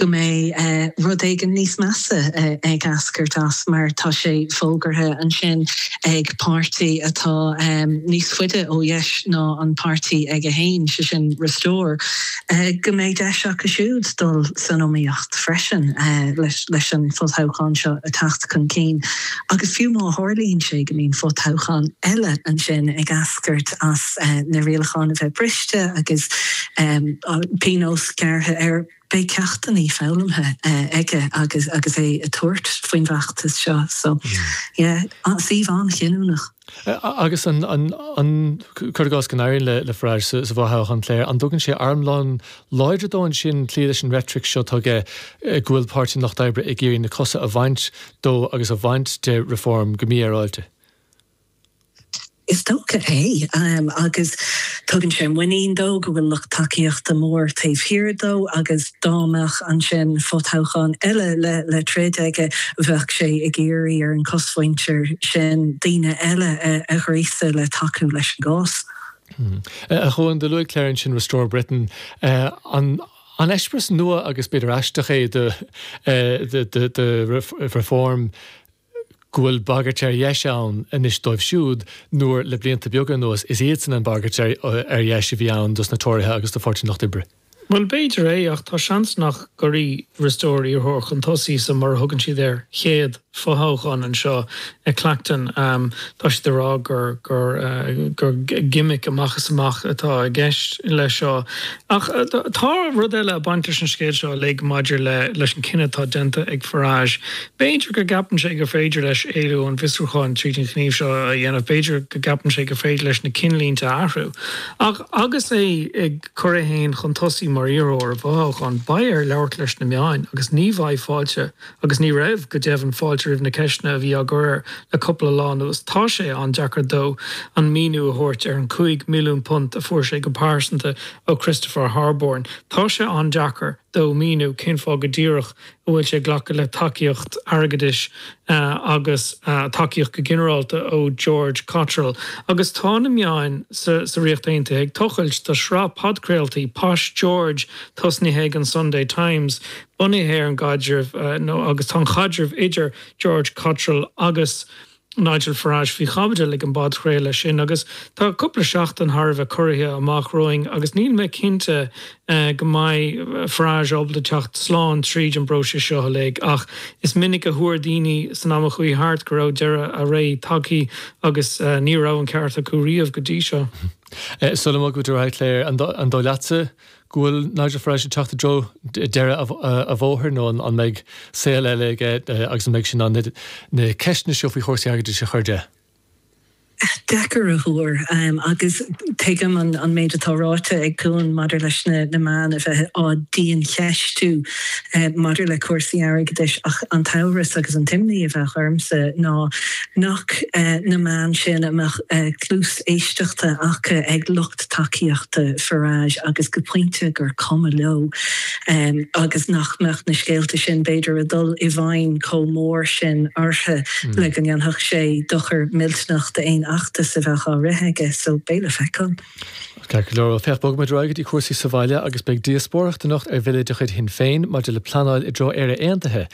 go mbeidh rud éigin níos measa ag eascairt as mar tá sé fógartha ansin ag páirtí atá níos faide ó dheis ná an páirtí aige féin, sé sin Restore, go mbeidh deis acu siúd dul san iomaíocht freisin leis an bhfothoghchán seo a theacht chun cinn agus fiú má tharlaíonn sé go mbíonn fothoghchán eile ansin ag eascairt as na rialacháin a bheith briste agus pionós gearrtha air. Beidh ceachtanna foghlamtha aige agus é ag tabhairt faoin bhfeachtas seo so yeah, suíomh an-chinniúnach. Agus an, an, cuir i gcás go n-éiríonn le Farage sa bhfothoghchán Clare, an dtugann sé armlón láidir dó ansin cloí leis an reitric seo tuilleadh go bhfuil Páirtí an Lucht Oibre ag iarraidh na cosa a bhaint dó agus a bhaint de Reform go mífhéaráilte? Is dócha é, agus tugann sé muinín dó go bhfuil lucht tacaíochta mór taobh thiar dó agus dá mbeadh ansin fo-toghchán eile le troid aige bheadh sé ag iarraidh ar an gcosmhuintir sin daoine eile a ghríosadh le tacú leis an gcás. A Chuan, do luaigh Clare ansin Restore Britain. An eispéireas nua agus b'fhéidir aisteach é do Reform go bhfuil bagairt ar dheis ann anois dóibh siúd, nuair, le blianta beaga anuas, is iadsan an bhagairt ar dheis a bhí ann dos na Tóraithe agus do Pháirtí an Lucht Oibre. Bhuel, b'fhéidir é, ach tá seans nach gcuirfidh Restore iarrthóir chun tosaigh sa, mar a thugann siad air, chéad fothoghchán anseo i Clacton. Tá siad ag rá gur, gur, gur gimic amach is amach atá i gceist leis seo. Ach tá rud eile ag baint leis an scéal seo uilig maidir le, leis an gcinneadh atá déanta ag Farage, B'fhéidir go gceapann sé gur féidir leis éalú ón bhfiosrúchán tríd an ghníomh seo a dhéanamh, b'fhéidir go gceapann sé gur féidir leis na cinnlínte a athrú. Ach agus é ag cur é féin chun tosaigh mar iarrthóir i bhfothoghchán, beidh air labhairt leis na meáin agus ní bheidh fáilte, agus ní raibh, go deimhin, fáilte roimh na ceisteanna a bhí á gcur air le cupla lá anuas. Tá sé an-deacair dó aon mhíniú a thabhairt ar an £5 milliún a fuair sé go pearsanta ó Christopher Harborne. Tá sé an-deacair dó míniú cén fáth go díreach go bhfuil sé ag glacadh le tacaíocht airgeadais agus tacaíocht go ginearálta ó George Cottrell agus tá na meáin sa Ríocht Aontaithe ag tochailt. Tá sraith podchraoltaí Posh George tosnaithe ag an Sunday Times bunaithe ar an gcaidreamh úd agus tá an caidreamh idir George Cottrell agus Nigel Farage faoi chaibidil ag an bpodchraoladh sin agus tá cúpla seachtain thar a bheith corraithe amach romhainn agus níl mé cinnte go mbeidh Farage ábalta teacht slán tríd an bpróiseas seo uilig ach is minic a thuar daoine san am a chuaigh thart go raibh deireadh a ré tagtha agus ní raibh an ceart acu riamh go dtí seo. Sula mbogfaimid ar aghaidh Clare, an dóigh leatsa go bhfuil Nigel Farage ag teacht i dtreo deireadh a bhóthair nó an mbeidh saol eile aige agus an mbeidh sé in ann na ceisteanna seo faoi chúrsaí airgeadais a chur de? Deacair a thuar agus tuigim an méid atá ráite ag Cuan maidir leis na meáin a bheith á diancheistiú maidir le cúrsaí airgeadais ach an t-amhras agus an t-imní a bheadh ormsa ná nach na meáin sin a mbeadh cluas éisteachta acu ag lucht lucht tacaíochta Farage agus go pointe gur cuma leo é agus nach mbeadh na scéalta sin, b'fhéidir, ag dul i bhfeidhm chomh mór sin orthu le go ndéanfadh sé dochar millteanach d'aon fheachtas a bheadh á rith aige. So, beidh le feiceáil. Ceart go leor, bhuel, féach, bogfaidh muid ar aghaidh go dtí cúrsaí sa bhaile agus beidh díospóireacht anocht ar bhille de chuid Shinn Féin maidir le pleanáil i dtreo Éire Aontaithe.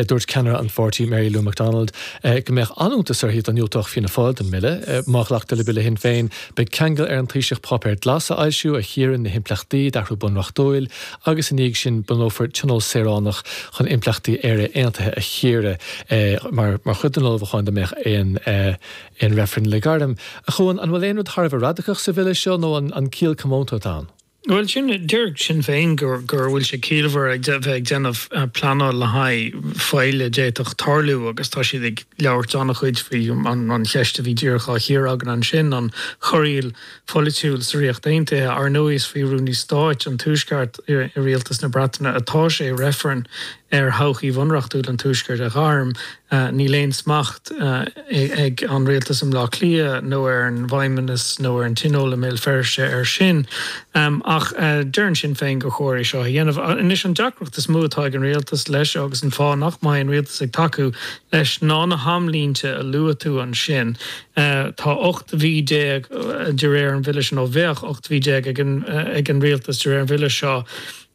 Dúirt ceannaire an pháirtí, Mary Lou McDonald, go mbeadh an-iontas uirthi dá ndiúltódh Fianna Fáil don mbille. Má ghlactar le bille Shinn Féin, Beidh ceangal ar an Taoiseach páipéar glas a fhoilsiú a chíorann na himpleachtaí d'athrú bunreachtúil agus i ndiaidh sin bunófar tionól saoránach chun impleachtaí Éire Aontaithe a chíoradh mar mar chuid den ullmhúchán dá mbeadh aon aon reifreann le gairm. A Chuan, an bhfuil aon rud thar a bheith radacach sa Bhille seo nó an an ciall comónta atá ann? Bhuel, sin, deir Sinn Féin go bhfuil sé ciallmhar a bheith ag déanamh pleanáil le haghaidh faille a d'fhéadfadh tarlú agus tá siad ag labhairt an-chuid faoi an cheist a bhí díreach á chíoradh againn ansin, an chorraíl pholaitiúil sa Ríocht Aontaithe. Ar ndóigh, is faoi Rúnaí Stáit an Tuaisceart i Rialtas na Breataine atá sé reifreann a ar thodhchaí bhunreachtúil an Tuaiscirt a ghairm, níl aon smacht ag an rialtas i mBleá Cliath nó ar an bhFeidhmeannas nó ar an Tionól i mBéal Feirste air sin. Ach deireann Sinn Féin gur chóir é seo a dhéanamh. Anois, an deacracht is mó atá ag an rialtas leis seo, agus an fáth nach mbeidh an rialtas ag tacú leis, ná na hamlínte a luaigh tú ansin. Tá 18 mhí de réir an bhille seo, nó bheadh 18 mhí ag an rialtas de réir an bhille seo,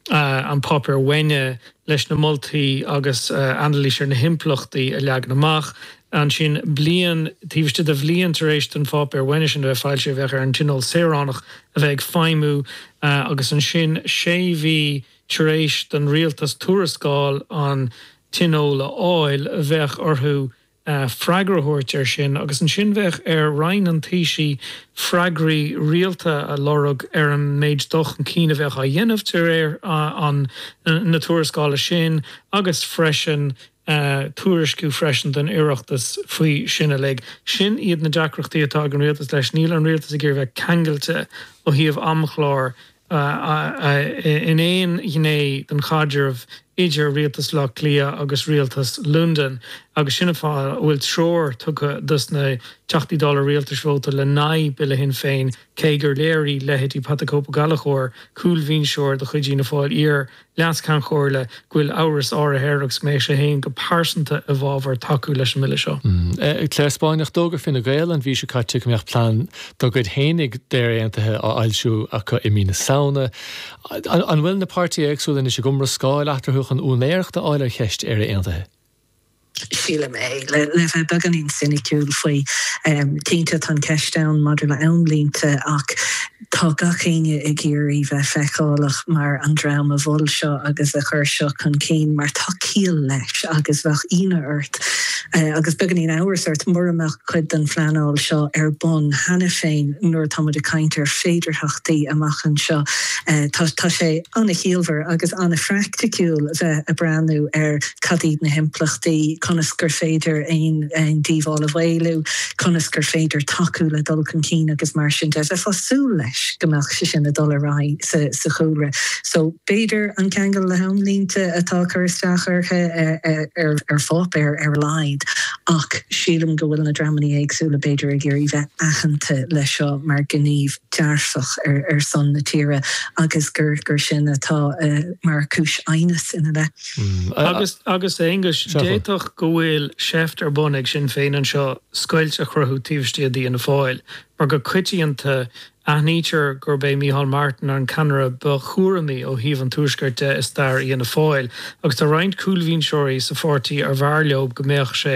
an Páipéar Uaine leis na moltaí agus anailís ar na himpleachtaí a leagan amach. Ansin, bliain taobh istigh de bhliain tar éis don Pháipéar Uaine sin a bheith foilsithe, bheadh ar an Tionól Saoránach a bheith ag feidhmiú agus ansin, sé mhí tar éis don Rialtas tuarascáil an Tionóil a fháil, bheadh orthu freagra a thabhairt air sin, agus ansin bheadh ar Roinn an Taoisigh freagraí rialta a lorg ar an méid dul chun cinn a bheadh á dhéanamh de réir na tuarascála sin agus freisin tuairisciú freisin don Oireachtas faoi sin uilig. Sin iad na deacrachtaí atá ag an Rialtas leis, níl an Rialtas ag iarraidh bheith ceangailte ó thaobh amchlár ii, in aon ghné don chaidreamh idir Rialtas Bhaile Átha Cliath agus Rialtas Londain agus sin an fáth a bhfuil treoir tugtha dos na Teachtaí Dála Rialtais vótáil in aghaidh Bille Shinn Féin cé gur léirigh leithéidí Pat the Cope Ó Gallchóir, cúlbhinseoir de chuid Fhianna Fáil iar Leas-Cheann Comhairle go bhfuil amhras áirithe air agus go mbeadh sé féin go pearsanta i bhfabhar tacú leis an mBille seo. Clare Spáinneach, d'fhógair Fine Gael an mhí seo caite go mbeadh plean dá gcuid féinig d'Éire Aontaithe á fhoilsiú acu i mí na Samhna. An bhfuil na páirtithe éagsúla anois ag iomrascáil eatarthu chun úinéireacht a fháil ar cheist Éire Aontaithe? sílim é. Le bheith beagáinín soiniciúil faoi, cinnte tá an cheist ann maidir le amlínte ach tá gach éinne ag iarraidh bheith feiceálach mar an dream a mhol seo agus a chuir seo chun cinn mar tá ciall leis agus bheadh ionadh ort agus beagáinín amhrais ort mura mbeadh cuid den phleanáil seo ar bun cheana féin nuair atá muid ag caint ar féidearthachtaí amach anseo. Tá sé an-chiallmhar agus an-phraicticiúil bheith a' breathnú ar cad iad na himpleachtaí, conas gur féidir aon díobháil a mhaolú, conas gur féidir tacú le dul chun cinn agus mar sin de. Bheifeá súil leis go mbeadh sé sin a' dul ar aghaidh sa chúlra so b'fhéidir an ceangal le hamlínte atá a' cur isteach orthu ar pháipéar ar a laghad ach sílim go bhfuil na dreamanna éagsúla b'fhéidir ag iarraidh bheith aitheanta le seo mar gníomh dearfach ar son na tíre agus gur sin atá mar chúis aighneas ina leith. Agus, a Aonghuis, d'fhéadfadh go bhfuil seift ar bun ag Sinn Féin anseo scoilt a chruthú taobh istigh d'Fhianna Fáil, mar go coitianta aithnítear gurb é Micheál Martin an ceannaire ba chúramaí ó thaobh an Tuaiscirt de i stair Fhianna Fáil, agus tá roinnt cúlbhinseoirí sa pháirtí arbh fhearr leo go mbeadh sé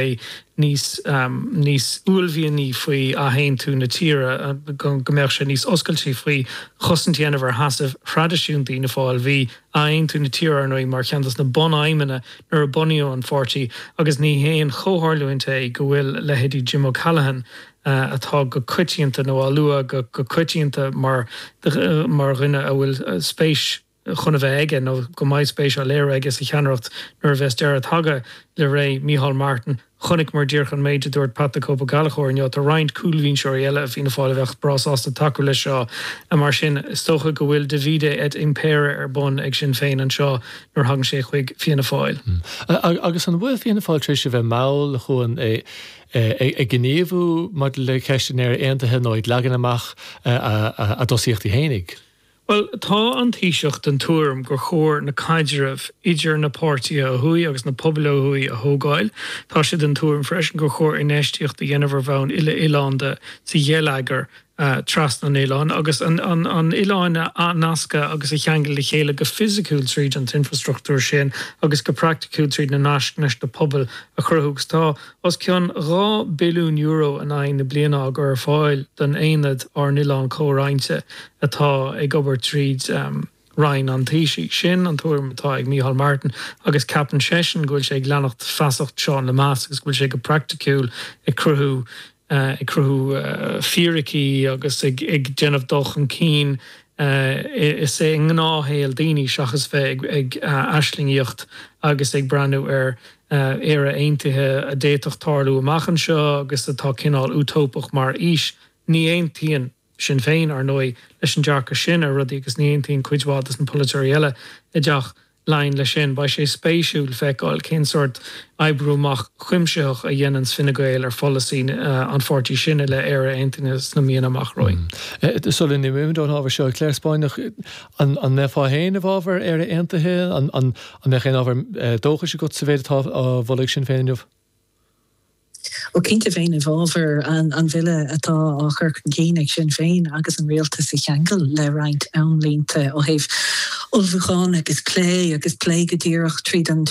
níos, níos uaillmhianaí faoi athaontú na tíre, go mbeadh sé níos oscailtí faoi chosaint a dhéanamh ar sheasamh thraidisiúnta Fhianna Fáil. Bhí athaontú na tíre, ar ndóigh, mar cheann dos na bun-aidhmeanna nuair a bunaíodh an pháirtí agus ní haon chomhtharlúint é go bhfuil leithéidí Jim O'Callaghan, atá go coitianta nó á lua go coitianta mar dhuine a bhfuil spéis chun a bheith aige, nó go mbeidh spéis á léiriú aige sa cheannaireacht nuair a bheas deireadh tagtha le ré Micheál Martin. Chonaiceamar díreach an méid a dúirt Pat 'The Cope' Ó Gallchóir inniu. Tá roinnt cúlbhinseoirí eile i Fianna Fáil a bheadh breá sásta tacú leis seo. Mar sin, is dócha go bhfuil 'divide et impere' ar bun ag Sinn Féin anseo nuair a thagann sé chuig Fianna Fáil. Agus an bhfuil Fianna Fáil tar éis a bheith mall chun gníomhú maidir le ceist Éire Aontaithe nó ag leagan amach a dtosaíochtaí fhéinig? Bhuel, tá an Taoiseach den tuairim gur chóir na caidrimh idir na páirtithe ó thuaidh agus na pobail ó thuaidh a thógáil. Tá sé den tuairim freisin gur chóir infheistíocht a dhéanamh ar bhonn uile-oileánda sa gheilleagar trasna an oileáin agus an oileáin a athnascadh agus a cheangal le chéile go fisiciúil tríd an t-infreastruchtúr sin agus go praiticiúil tríd na naisc leis na pobail a chruthú agus tá os cionn €2 billiún in aghaidh na bliana á gcur ar fáil don Aonad Ár nOileán Comhroinnte. atá ag obair tríd Roinn an Taoisigh. Sin an tuairim atá ag Micheál Martin agus ceapann seisean go bhfuil sé ag leanacht feasacht Seán Lemass agus go bhfuil sé go praiticiúil ag cruthú ag cruthú fíricí agus ag ag déanamh dul chun cinn is é i ngnáthshaol daoine seachas bheith ag ag aislingíocht agus ag breathnú ar Éire Aontaithe a d'fhéadfadh tarlú amach anseo agus atá cineál Útóipeach mar fhís. Ní aontaíonn. Sinn Féin, ar ndóigh, leis an dearcadh sin ar rudaí agus ní aontaíonn cuid mhaith de na polaiteoirí eile i dTeach Laighin leis sin. Beidh sé spéisiúil feiceáil cén sórt oibriú amach cuimsitheach a dhéananns Fine Gael ar pholasaí an pháirtí sin i leith Éire Aontaithe sna míonna amach romhainn. Sula n-imeoimid ón ábhar seo, a Claire Spáinneach, an mbeifeá féin i bhfabhar Éire Aontaithe? An mbeadh aon ábhar dóchais agat sa mhéid atá á mholadh ag Sinn Féin inniu? Ó, cinnte bheinn i bhfábhar an bhille atá á chur chun cinn ag Sinn Féin agus an rialtas a cheangal le roinnt amlínte ó thaobh ullmhúcháin agus plé agus plé go díreach tríd an